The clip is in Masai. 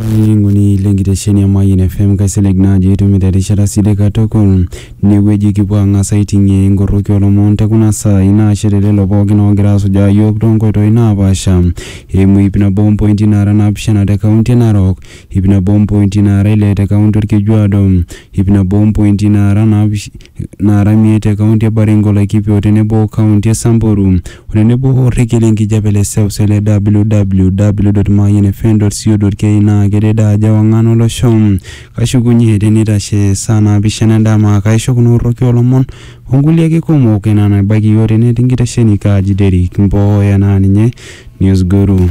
Olainining'oni lenkitesheni e Mayian FM kaisilig naa ajo itumito erishata sidai katukul. Inewueji kipuo ang'as aiting'ie inkorroki olomon te kuna saai naashe te lelo pookin oogira asujaa iyiook toonkoitoi naapaasha eimu ip nabo ompointi naara naapishana te kaunti e Narok, ip nabo ompointi naara ile te kaunti Olkejuado, ip nabo ompointi naara naapishana naara miet te kaunti e Baringo, Laikipia o tenebo o kaunti e Samburu o tenebo o rrekie le nkijape le seuse le www.mayianfm.co.ke naa kedede ajo ewang'an olosho. Kashukunye te neitashe saa naapishana endama kaisho kuna orroki oo lomon o nkulie ake kumok enaa enabaiki iyiook te net inkitesheni Kaji Derrick Mboya naa ninye Newsguru.